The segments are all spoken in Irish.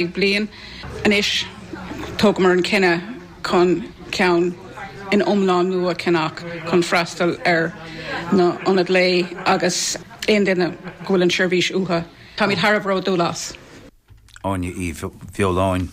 bliain. Anois thógamar an cinneadh chun ceann iomlán nua a cheannach chun freastal ar na hionaid lae agus aon duine go bhfuil an seirbhís uatha. Táimid thar a bheith bródúil as. Áine Uí Bheoláin.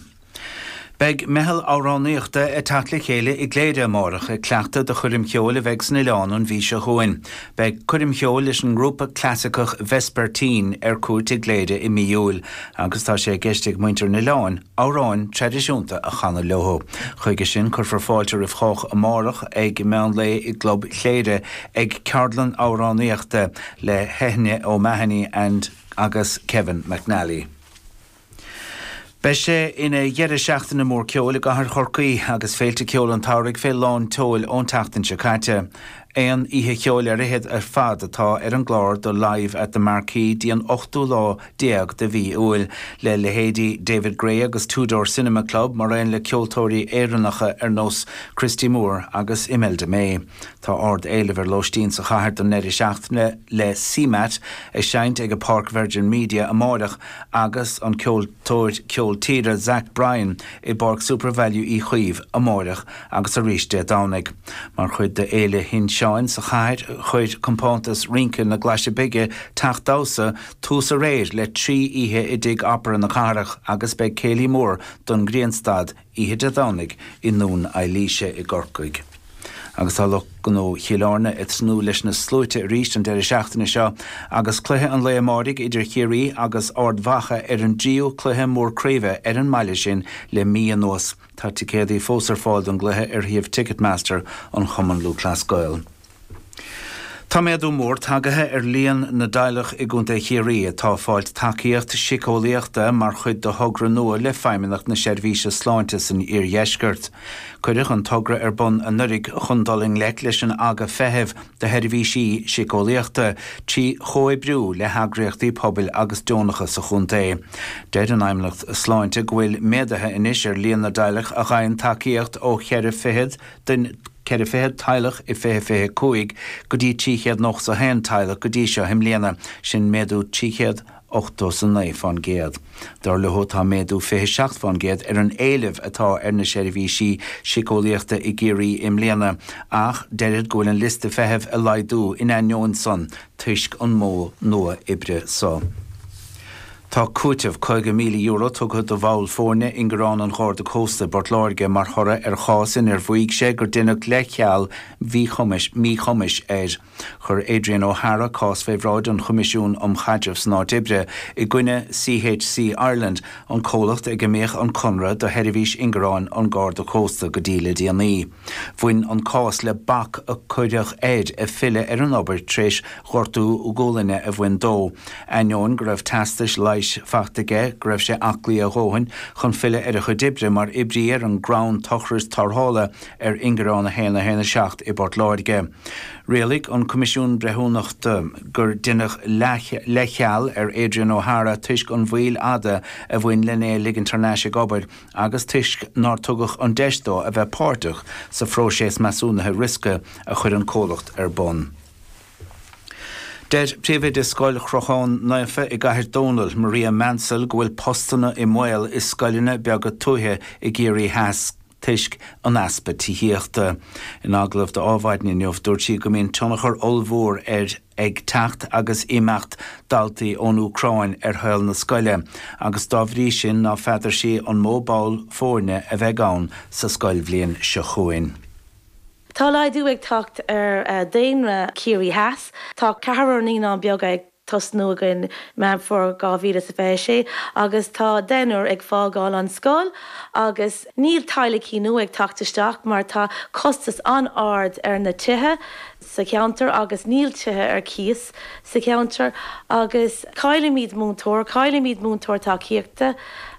Beidh meitheal amhránaíochta ag teacht le chéile i gCléire amárach ag cleachtadh do choirm cheoil a bheidh san oileán an mhí seo chugainn. Beidh coirm cheoil leis an ngrúpa clasaiceach Vespertine ar cuairt i gCléire i mí Iúil agus tá sé i gceist ag muintir an oileáin amhráin thraidisiúnta a chanadh leo. Chuige sin, cuirfear fáilte roimh chách amárach ag meán lae i gClub Chléire ag ceardlann amhránaíochta le hEithne O'Mahony agus Kevin McNally. Beidh sé ina dheireadh seachtaine mór ceoil i gCathair Chorcaí, agus féilte ceoil an tsamhraidh fé lán tseoil ón tseachtain seo caite. Aon oíche cheoil ar fhichead ar fad atá ar an gclár do Live at the Marquee dtí an ochtú lá déag de mhí Iúil, le leithéidí David Gray agus Two Door Cinema Club mar aon le ceoltóirí Éireannacha ar nós Christy Moore agus Imelda May. Tá ardéileamh ar lóistín sa chathair don ndeireadh seachtaine le CMAT ag seinnt ag Páirc Virgin Media amáireach agus an ceoltóir ceol tíre Zach Bryan i bPáirc Supervalu Uí Chaoimh amáireach. agus arís Dé Domhnaigh. Mar chuid de Fhéile Fheil' Sin Seáin sa chathair chuir compántas rince na nGlaise Beaga, Teach Damhsa, tús aréir le trí oíche i dTigh Opera na cathrach agus beidh céilí mór don Ghrianstad oíche Dé Domhnaigh i nDún Eilíse i gCorcaigh. Agus tá lucht gnó Chill Airne ag tnúth leis na sluaite arís an deireadh seachtaine seo agus cluiche an lae amáirigh idir Ciarraí agus Ard Mhacha ar an dtríú cluiche mór craoibhe ar an mbaile sin le mí anuas. Tá ticéadaí fós ar fáil don gcluiche ar shuíomh Ticketmaster an Chumann Lúthchleas Gael. Tá méadú mór tagaithe ar líon na dteaghlach i gContae Chiarraí atá ag fáilt tacaíocht síceolaíochta mar chuid de thogra nua le Feidhmeannacht na Seirbhíse Sláinte san Iardheisceart. Cuireadh an togra ar bun anuiridh chun dul i ngleic leis an aga feithimh do sheirbhísí síceolaíochta trí chomhoibriú le heagraíochtaí pobail agus deonacha sa chontae. Deir an Fheidhmeannacht Sláinte go bhfuil méadaithe anois ar líon na dteaghlach a gheibheann tacaíocht ó cheithre fichead den ceithre fichead teaghlach i fiche fiche cúig go dtí trí chéad nócha a haon teaghlach go dtí seo i mbliana, sin méadú trí chéad 89 fán gcéad. Dar leo tá méadú 27 fán gcéad ar an éileamh atá ar na seirbhísí síceolaíochta i gCiarraí i mbliana ach deirid go bhfuil an liosta feithimh ag laghdú in ainneoin san toisc an modh nua oibre so. Tá cúiteamh €50,000 tugtha do bhall foirne in ingearán an Gharda Cósta i bPort Láirge mar thoradh ar chás inar mhaígh sé gur deineadh leithcheal míchum míchumais air. Chuir Adrian O'Hara cás fé bhráid an Choimisiún um Chaidreamh san Áit Oibre i gcoinne CHC Ireland, an comhlacht ag a mbíodh an conradh do sheirbhís ingearáin an Gharda Cósta go dtí le déanaí. Bhain an cás le bac a cuireadh air filleadh ar an obair tréis ghortú gualainne a bhain dó, ainneoin go raibh teastais leighis faighte aige go raibh sé aclaí a dhóthain chun filleadh ar a chuid oibre mar oibrí ar an gcrann tochrais tarrthála. ar ingearán 1 1 7 i bPort Láirge. Rialaigh an Coimisiún Breithiúnachta gur deineadh leithcheal ar Adrian O'Hara toisc an mhoill fhada a bhain lena ligint thar n-ais ag obair agus toisc nár tugadh an deis dó a bheith páirteach sa phróiseas measúnaithe riosca a chuir an comhlacht ar bun. Deir Príomhoide Scoil Chrochán Naofa i gCathair Dónall, Maria Maunsell go bhfuil postanna i mbaol i scoileanna beaga tuaithe i gCiarraí Theas. toisc an easpa tithíochta. In agallamh d'Adhmhaidin inniu, dúirt sí go mbíonn tionchar ollmhór ar ag teacht agus imeacht daltaí ón Úcráin ar shaol na scoile agus dá bhrí sin ná feadair sí an mó ball foirne a bheidh ann sa scoilbhliain seo chugainn. Tá laghdú ag teacht ar dhaonra Chiarraí Theas. Tá ceathrar naíonán beag ag. tosnú againn Meán Fómhair 2026 agus tá deichniúr ag fágáil an scoil agus níl teaghlaicí nua ag teacht isteach mar tá costas an-ard ar na tithe sa cheantar agus níl tithe ar cíos sa cheantar agus caillimid múinteoir, caillimid múinteoir tacaíochta.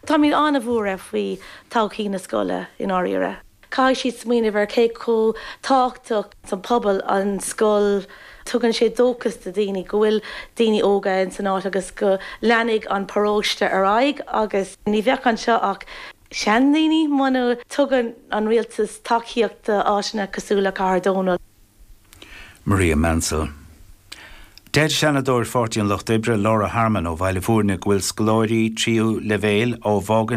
Táimid an-bhuartha faoi thodhchaí na scoile i ndáiríre. Caithfidh siad smaoineamh ar cé chomh tábhachtach sa phobal an scoil. Tugann sé dóchas do daoine go bhfuil daoine óga in san áit agus go leanfaidh an paróiste ar aghaidh agus ní bheadh anseo ach seandaoine muna dtugann an rialtas tacaíocht do áiteanna cosúil le Cathair Dónall. Maria Maunsell. Deir Seanadóir Pháirtí an Lucht Oibre, Laura Harmon ó Bhaile Bhúirne go bhfuil scoláirí tríú leibhéil ó Vaughan,